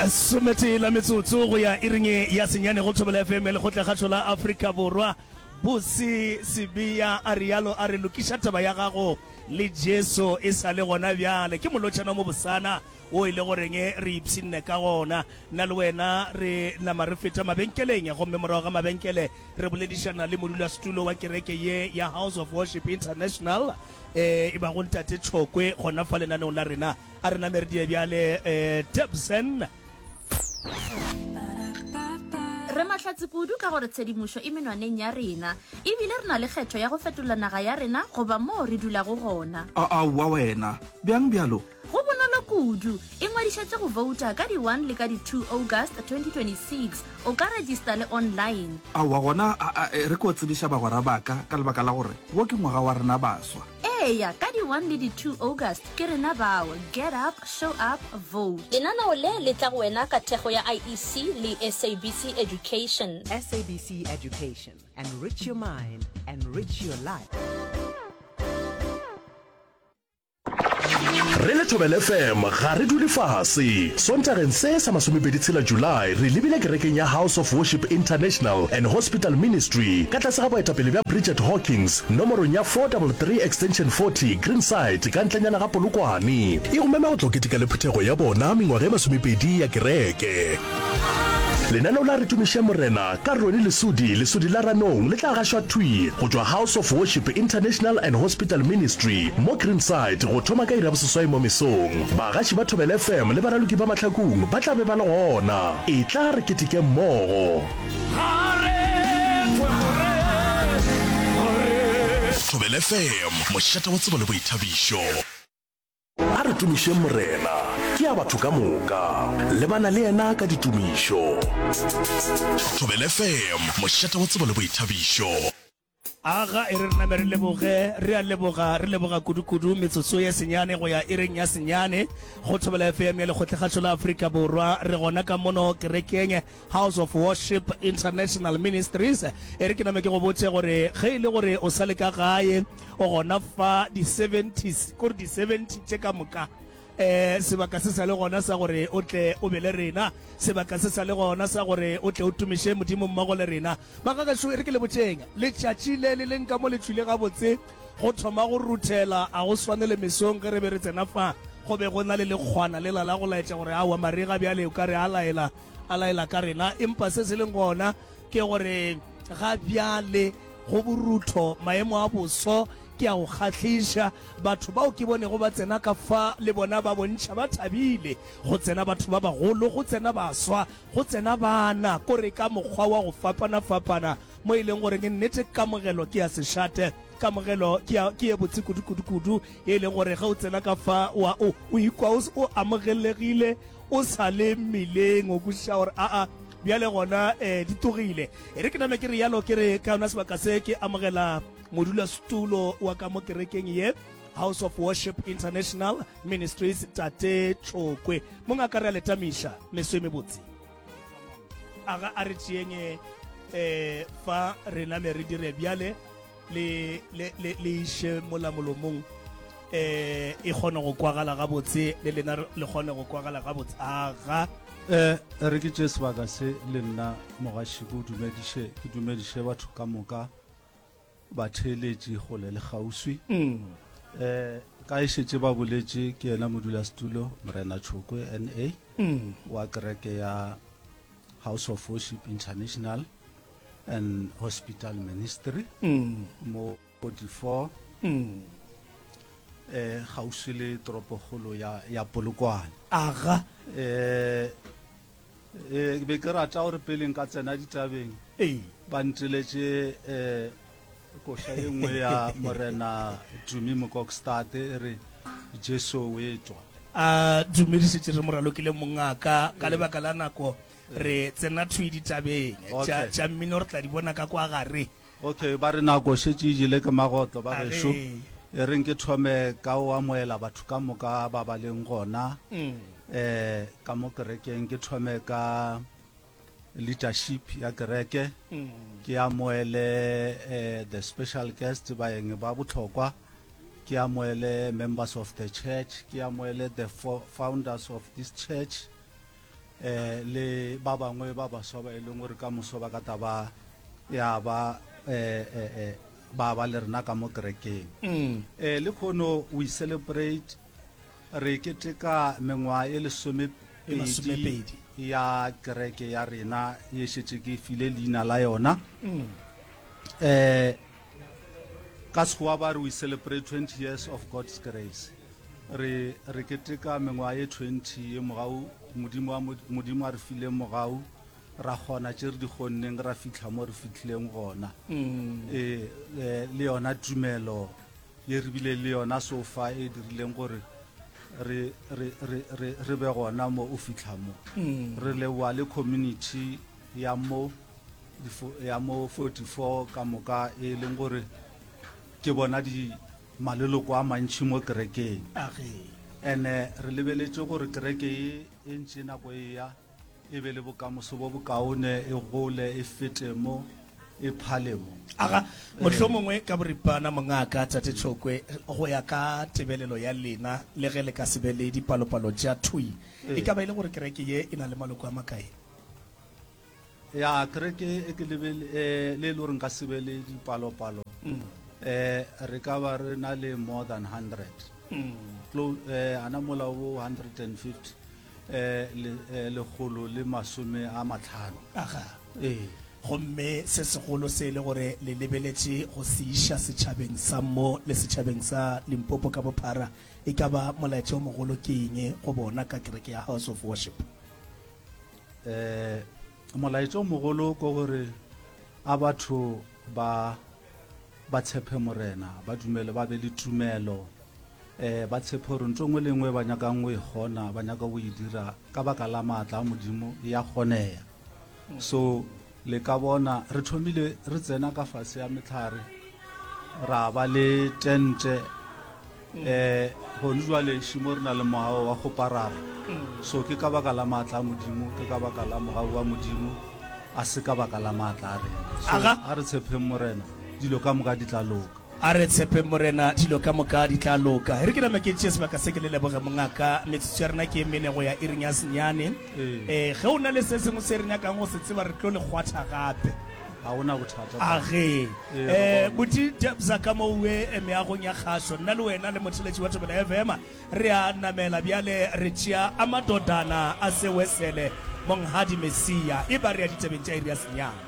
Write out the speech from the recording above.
Sometee la metsotso go ya iring ya senyane go Thobela FM ya Lekgotlakgašo la Afrika Borwa. Busi Sibiya a realo a re lokiša taba ya gago le Jesu e sa le gona bjale. Ke molotšana o mobosana wo e le goreng re ipshinne ka gona. Nna le wena re nama re feta mabenkeleng gomme morago ga mabenkele re boledišana le modulasetulo wa kereke ye ya House of Worship International e bago Ntate Tšhokwe gona fa lenaneong la rena. a re nameredie bjale um tebsen re mahlatse kudu ka gore tshedimošo e menwaneng ya rena ebile re na le kgetho ya go fetola naga ya rena goba moo re dulago gona aowa wena bjang bjalo go bonolo kudu e ngwadišetse go vouta ka di-1 le ka di-2 august 2026 o ka regista le online aowa gona re ko tsebiša bagwera baka ka lebaka la gore wo ke ngwaga wa rena baswa Eya, ka di one le di two August ke rena bao, get up, show up, vote. Lenaneo le le tla go wena ka thekgo ya IEC le SABC Education. SABC Education, enrich your mind, enrich your life. Re le Thobela FM ga re dule fase. Sontageng se sa masomepedi tshela July re lebile kerekeng ya House of Worship International and Hospital Ministry ka tlase ga boetapele bja Bridget Hawkins Nomorong ya 433 extension 40, Greenside, ka ntlenyana ga Polokwane. E go mema go tlo keteka le phuthego ya bona mengwaga e masomepedi ya kereke. Lenaneo la Re Tumišeng Morena ka Ronnie Lesudi, Lesudi la Ranong, le tla gašwa thwi go tšwa House of Worship International and Hospital Ministry mo Greenside go thoma ka iri ya boseswai mo mesong. Bagaši ba Thobela FM le baraloki ba Mahlakung ba tla be ba le gona. Etla re ketekeng mmogo. Thobela FM, mošate wa tsebo le boithabišo. A re tumišeng Morena, ke a batho ka moka, lebana le yena ka ditumišo. Thobela FM, mošate wa tsebo le boithabišo. Aga e re re name re leboge, re a leboga, re leboga kudu-kudu, metsotso ye senyane go ya ireng ya senyane, go Thobela FM ya Lekgotlegašo la Afrika Borwa. Re gona ka mono kerekeng House of Worship International Ministries. E re ke name ke go botše gore ge e le gore o sa le ka gae, o gona fa di seventies, ko re di seventy tše ka moka, Ee, sebaka se sa le gona sa gore o tle o be le rena. Sebaka se sa le gona sa gore o tle o tumiše Modimo mmogo le rena. Bagagešo, e re ke le botšeng, letšatši le le leng ka mo le tšwile gabotse go thoma go ruthela, a go swane le mesong ge re be re tsena fa, go be go na le lekgwana lela la go laetša gore, Aowa, marega bjale o ka re a laela, a laela ka rena. Empa se se leng gona ke gore ga bjale go borutho, maemo a boso, Ke a go kgahliša. Batho bao ke bonego ba tsena ka fa le bona ba bontšha ba thabile, go tsena batho ba bagolo, go tsena baswa, go tsena bana, ko re ka mokgwa wa go fapana-fapana, mo e leng gore ke nnete kamogelo ke ya sešate. Kamogelo ke ya, ke ye botse kudu-kudu-kudu, ye e leng gore ge o tsena ka fa wa, o, o ikwa o, o amogelegile o sa le mmileng, o kwešiša gore aa, bjale gona, ee, di togile. E re ke name ke re yalo, ke re ka yona sebaka se ke amogela. Modulasetulo wa ka mo kerekeng ye House of Worship International Ministries Tate Tlokwe mong a ka re a letamiša meso e mebotse a ga a re tšeeng eh fa rena me re dire bjale le le le le iše molamolomong eh e kgone go kwagala gabotse le lena le kgone go kwagala gabotse aga Eh, re ke tše sebaka se le nna mogašiko o dumediše ke dumediše batho ka moka Batheeletši kgole le kgauswi e ka e šetše ba boletše ke yena modulasetulo Morena Tšhokwe NA wa kereke ya House of Worship International and Hospital Ministry mo 44 e kgauswi le toropokgolo ya Polokwane. Aga. E e be ke rata gore pele nka tsena ditabeng ee ba nteletše um koša e nngwe ya morena tumi mokokstad e re jesu o etwa a dumedišitše re moralokile mongaka ka lebaka la nako re tsena thwi ditabeng tša mmino re tla di bona ka kwa gare Ok, ba re nako šetše e jele ke magotlo ba gešo. E reng ke thome ka go amoela batho ka moka ba ba leng gona ka mo kerekeng. Ke thome ka leadership ya kereke, ke amoele the special guest ba eng ba botlhokwa, ke amoele members of the church, ke amoele the founders of this church. um le ba bangwe ba baswa ba e leng gore ka moso ba ka ta ba ya ba um ba ba le rena ka mo kerekeng um le kgono we celebrate re keteka mengwaga e lesomepedi ya kereke ya rena ye šetse ke file leina la yona um ka sekgowa ba re we celebrate 20 years of god's grace Re, re keteka mengwaga ye 20 ye mogau, Modimo, wa, Modimo a re fileng mogau, ra kgona tše re di kgonneng, ra fitlha mo re fitlhileng gona. Mm. E, e, le yona tumelo ye re bile le yona sofa e dirileng gore re, re, re, re, re be gona mo o fitlha mo. Mm. Re leboa le community ya mo ya mo 44 ka moka e leng gore ke bona di Maleloko a mantši mo kerekeng. Age. Ene re lebeletše gore kereke ye e ntše nako e ya, e be le bokamoso bo bokaone, e gole, e fete mo, e phale mo. Aga. Mohlomongwe ka boripana, Mongaka, Tate Tšhokwe, go ya ka tebelelo ya lena, le ge le ka se be le dipalopalo tša thwi, e ka ba e le gore kereke ye e na le maloko a makae? ya kereke e ke lebe e le le nka se be le dipalo palo mm. eh re ka ba re na le more than 100 mm. close eh ana mola wo 150 eh le eh, le kholo le masome a matlhano aga eh gomme se segolo se e le gore le lebeletse go se iša setšhabeng sa mo le setšhabeng sa limpopo ka bophara e ka ba molaetša o mogolo ke eng go bona ka kereke ya house of worship um molaetša o mogolo ko gore a batho ba ba tshephe morena ba dumele ba be le tumelo um ba tshephe gore nto ngwe le ngwe ba nyakang go e kgona ba nyaka go e dira ka baka la maatla a modimo ya kgoneya so Le ka bona, re thomile re tsena ka fase ya metlhare, ra ba le tente. Um gone jwale šimo re na le mogao wa go parara, so ke ka baka la maatla a Modimo, ke ka baka la mogao wa Modimo, a se ka baka la maatla a rena. So Aga. a re tshepheng Morena, dilo ka moka di tla loka. A re tshepeng Morena, dilo ka moka di tla loka. E re ke name ke tšee sebaka se ke le leboge mongaka. Metsotso ya rena ke e mene go ya iring ya senyane. Ee, ge o na le se sengwe se re nyakang go se tseba re tlo le kgwatha gape. Ga go na bothata, Padi. A ge. Ee, Ee, re a bona. Buti Debza ka mo we e meagong ya kgašo, nna le wena le motheletši wa Thobela FM re a namela bjale re tšea a madodana a se Wesele, Monghadi Mesia. E ba re ya ditabeng tša iri ya senyane.